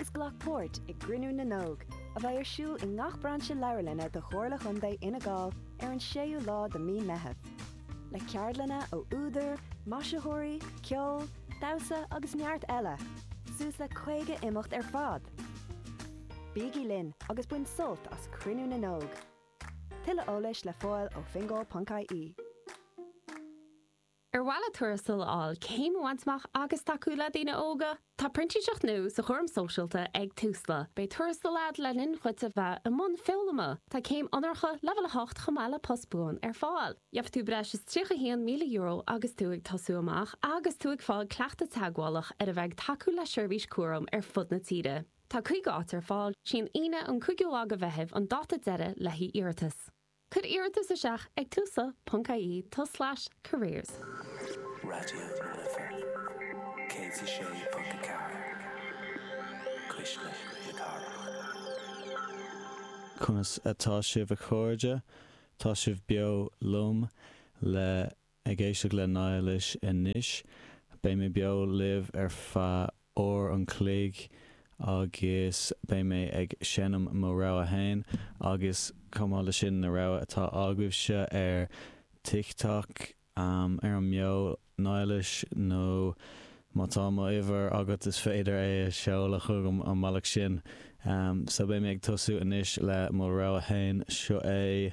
agus glac páirt i gCruinniú na nÓg, a bheidh ar siúl i ngach brainse leabharlainne de Chomhairle Chontae Fhine Gall ar an 6ú lá de mhí Meitheamh, le ceardlanna ó údair, maisitheoirí, ceol, damhsa agus neart eile, suas le 50 imeacht ar fad! Bígí linn agus bain sult as Cruinniú na nÓg! Tuilleadh eolais le fáil ó fingal.ie. Ar mhaith leat tuarastal a fháil, céim a bhaint amach agus tacú le daoine óga? Tá printíseacht nua sa gcúram sóisialta ag Tusla. Beidh tuarastal agat le linn dhuit a bheith i mbun foghlama. Tá céim onóracha leibhéal 8 chomh maith le post buan ar fáil. Gheobhaidh tú breis is €31,000 agus tú ag tosú amach agus tú ag fáil cleachtadh teagmhálach ar a bheith ag tacú le seirbhís cúraim ar fud na tíre. Tá 50 áit ar fáil. Sí an Aoine an 5ú lá de Mheitheamh an dáta deiridh le haghaidh iarratas. Cuir iarratas isteach ag tusla ponc IE tulslais careers. Raidió na Life 106.4 Cuisle na Cathrach. Conas atá sibh a chairde? Tá sibh beo liom le Ag éisteacht le Niallais anois. Beidh mé beo libh ar feadh uair an chloig agus beidh mé ag seinm mo rogha féin agus chomh maith leis sin na rogha atá agaibhse ar TikTok, ar an mbeo Niallais nó má tá mo uimhir agat is féidir é a sheoladh chugam an bealach sin. So beidh mé ag tosú anois le mo rogha féin, seo é.